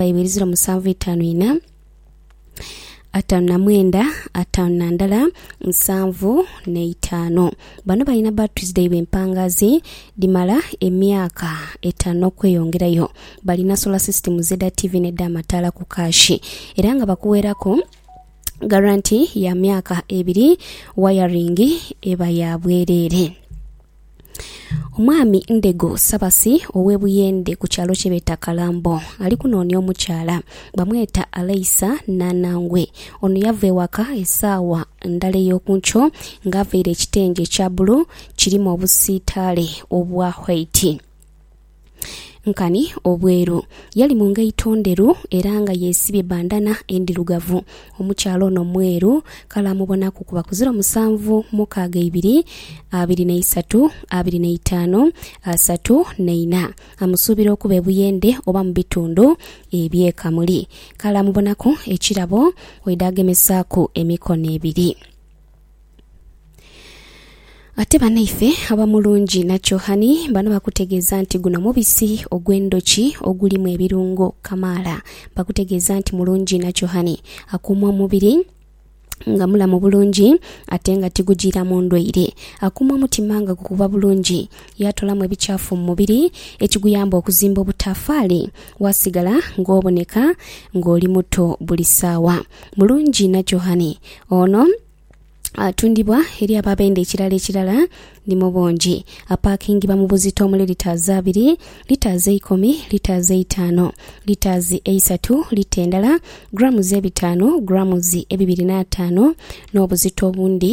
Baibo ibiri ziro musanvu itaanu ina ataanu na mwenda ataanu na ndala nsanvu n'eitaanu. Bano balina batteries dhaibwe empangaazi dhimala emyaka etaanu n'okweyongerayo. Balina solar systems edha TV n'edh'amataala ku kaashi era nga bakuweeraku garanti ya myaka ebiri wayaringi eba ya bwereere. Omwami Ndego Sabasi ow'e Buyende ku kyalo kyebeeta Kalambo ali kunoonia omukyala. Bamweta Aleisa Nanangwe. Ono yava ewaka esaawa ndala ey'oku nkyo nga avaire ekitengi ekya bbulu kirimu obusiitaale obwa whaiti. Nkani obweru. Yali mu ngaito ndheru era nga yesibye bandana endhirugavu. Omukyala ono mweru kale amubonaku kuba ku ziro musanvu mukaaga ibiri, abiri na isatu, abiri na itaanu, asatu na ina. Amusuubira okuba e Buyende oba mu bitundu eby'e Kamuli. Kale amubonaku ekirabo oidha agemesaaku emikono ebiri. Ate banaife aba Mulungi na Kyohani bano bakutegeeza nti guno mubisi ogw'endhoki ogulimu ebirungo kamaala. Bakutegeeza nti Mulungi na Kyohani akuuma omubiri nga mulamu bulungi ate nga tigujiiramu ndwaire. Akuuma omutima nga gukuba bulungi, yaatoolamu ebikyafu mu mubiri ekiguyamba okuzimba obutaafaali waasigala ng'oboneka ng'oli muto buli saawa. Mulungi na Johani. Ono atundibwa eri abo abenda ekirala ekirala ni mu bungi. Apaakingibwa mu buzito omuli litres abiri, litres eikumi, litres eitaano, litres eisatu, lita endala, grams ebitaanu, grams ebibiri n'ataano n'obuzito obundi.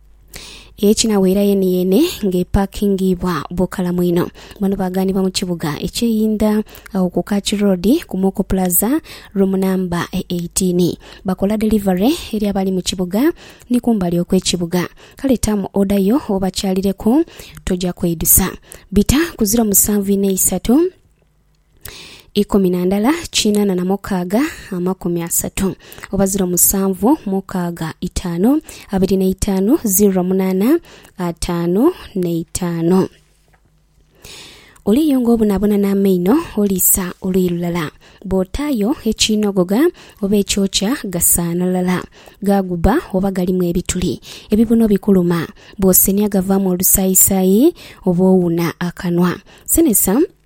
Ekinaghoera yeneyene nga epakingiibwa bukalamu inho. Bano bagaanibwa mu kibuga ekye Inda agho ku Kach Road ku Moko Plaza room number 18. Bakola delivery eri abali mu kibuga ni kumbali okwe kibuga. Kale taamu order yo obakyalireku toja kweidusa. Bita ku ziro musanvu inho eisatu. Ikumi na ndala kinana na mukaaga amakumi asatu oba ziro musanvu mukaaga itaanu abiri na itaanu ziro munana ataanu na itaanu. Oliyunga obonabona n'amaino oliisa oluyi lulala, bw'otaayo ekiinogoga oba ekyokya gasaana lala, gaaguba oba galimu ebituli, ebibuno bikuluma, bw'osenhya gavaamu olusaayisaayi oba owuna akanwa. Senhesa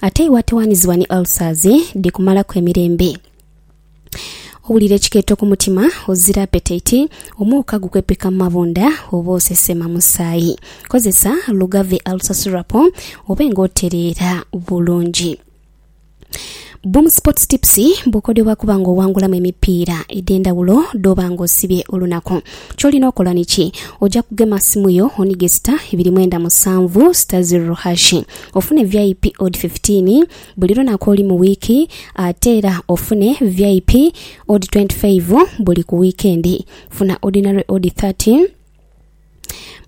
Ate iwe atowanizibwa ni ulcers dhikumalaku emirembe. Owulira ekikeeto ku mutima, ozira apetite, omwoka gukwepeka mu mabunda oba osesema musaayi. Kozesa Lugave Ulcer Syrup obe nga otereera bulungi. Boom Sports Tips, Bukodyo bwa kuba nga owangulamu emipiira edhendhawulo dh'oba nga osibye olunaku. Ky'olina okola ni ki? Oja kugema simu yo onige sita ibiri mwenda musanvu sita zirro hashi. ofune vip odi fifitiini buli lunaku olu mu wiiki ate era ofune vip odi twenti faivu buli ku wiikendi. Funa odinare odi thati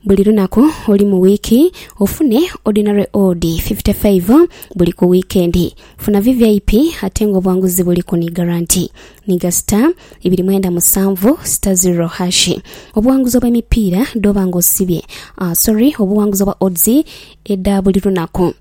buli lunaku olu mu wiiki ofune odinare odi fifite faivu buli ku wiikendi. Funa vvip ate nga obwanguzi buliku ni garanti. ni ga sita ibiri mwenda musanvu sita ziro hashi. Obuwanguzi obw'emipiira dh'oba nga osibye, sorry, obuwanguzi obwa odds edha buli lunaku.